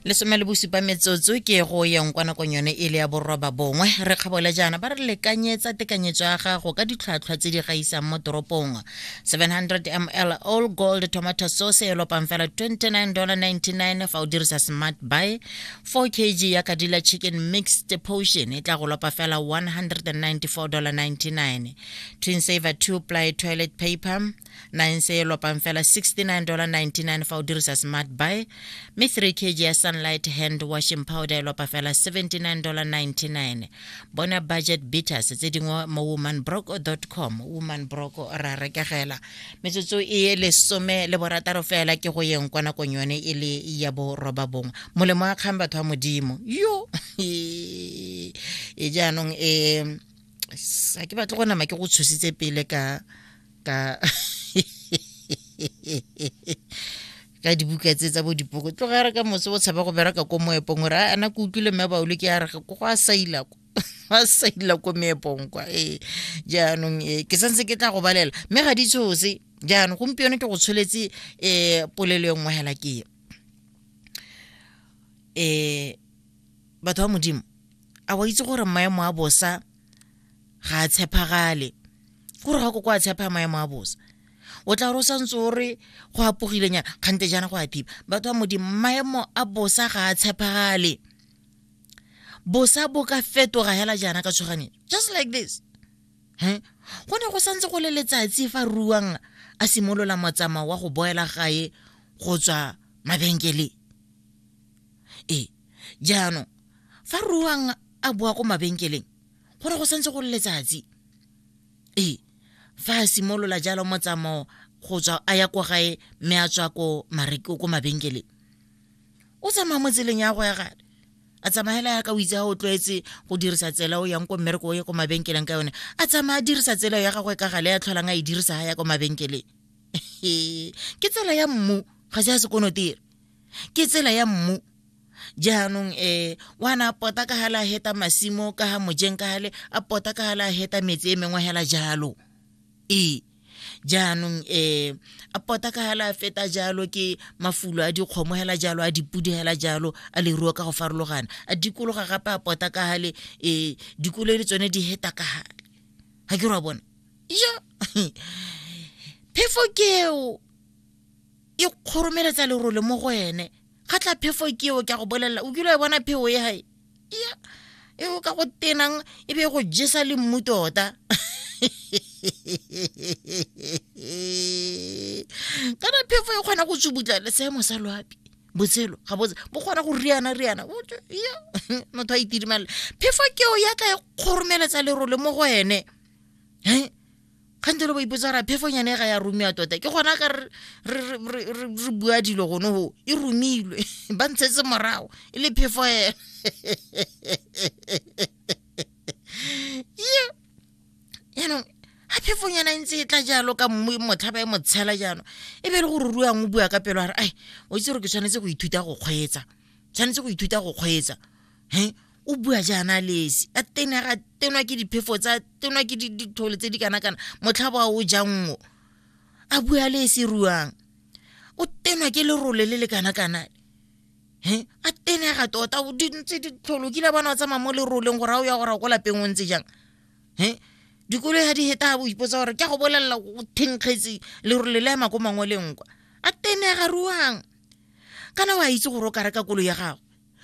lesome le bosupa metsotso ke go yeng kwa nakong yone e le ya boroba bongwe re kgabole jaana ba re lekanyetsa tekanyetso ya gago ka ditlhwatlhwa tse di gaisang mo toropong 700 ml all gold tomato sauce e lopang fela 29.99 fa o dirisa smart buy 4 kg ya kadila chicken mixed potion e tla go lopa fela 194.99 twin saver 2 ply toilet paper nine se e lopang fela 69.99 fa o dirisa smart buy mme 3 kg ya sunlight hand washing powder e lopa fela 79.99 bona budget beaters tse dingwe mo womanbroco com womanbroco ra rekegela metsotso e lesome le borataro fela ke go yeng kwa nakong yone e le ya boroba bongwe molemo a kgang batho ba modimo yo e jaanong e sa ke batle go nama ke go tshositse pele ka ka ka dibuka tse tsa bo dipoko tlogare ka motse o tshaba go bereka ko moepong gore a na ke utlwile mme baolo ke ya re go a saila ko ba sa ila ko meepong kwa ee jaanong ee ke santse ke tla go balela mme ga di tshose jaanong gompieno ke go tsholetse um polelo e nngwe hela ke um batho ba modimo a wa itse gore maemo a bosa ga a tshepagale gore ga ko kwa a tshepa maemo a bosa o tla gore o santse o re go apogilenyana kgante jaana go a thiba batho ba modimo maemo a bosa ga a tshepagale bosa bo ka fetoga hela jaana ka tshoganyetso just like this he go ne go santse go le letsatsi fa ruang a simolola motsamao wa go boela gae go tswa mabenkeleng Ee, jaanong fa ruang a boa ko mabenkeleng go re go santse go le letsatsi ee fa a simolola jalo motsamao go tswa a ya ko gae mme a tswa ko mareko ko mabenkeleng o tsamaya mo tseleng ya go ya gale a tsamaela ya ka o itse a o tlwaetse go dirisa tsela o yang ko mmereko o ye ko mabenkeleng ka yone a tsamaya a dirisa tsela ya gagwe ka gale ya tlholang a e dirisa ga ya ko mabenkeleng ke tsela ya mmu ga se ya sekonotiri ke tsela ya mmu jaanong um wa na a pota ka gale a heta masimo ka ga mojeng ka gale a pota ka gale a heta metsi e mengwe hela jalo ee jaanong um a pota ka gale a feta jalo ke mafulo a dikgomo hela jalo a dipudi hela jalo a leruo ka go farologana a dikologa gape a pota ka gale um dikolo le tsone di heta ka gale ga ke re wa bona ja phefo keo e kgoromeletsa lerole mo go ene ga tla phefo ke eo ke a go bolelela o kile wa e bona pheo e gae ya e o ka go tenang e be e go jesa le mmu tota kana phefo e kgona go tsubutla le seemo sa loapi botshelo ga botse bo kgona go riana riana ya motho a itirimalela phefo keo ya tla e kgoromeletsa lerole mo go ene um kgante lo ba ipotsa ra phefonyane ga ya rumiwa tota ke gona ka re bua dilo gone go e rumilwe ba ntshetse morago e le phefo ena ye yaanong ga phefonyana e ntse e tla jalo ka mmu motlha ba e motshela jaanong e be e le gore ruang o bua ka pelo a re ai o itse gore ke tshwanetse go ithuta go kgweetsa tshwanetse go ithuta go kgweetsa he o bua jaana lesi a tena ga tenwa ke diphefo tsa tenwa ke dithole tse di kana kana motlha ba o jango a bua le se ruang o tenwa ke lerole le le kana kana he a tena ga tota o di ntse di tlholo kile bona o tsamaya mo leroleng gore a o ya gore ko lapeng o ntse jang he dikolo ya di heta bo ipotsa gore ke go bolelela o thenkgetse lerole le ema ko mangwe le nkwa a tena ga ruang kana wa itse gore o ka reka kolo ya gago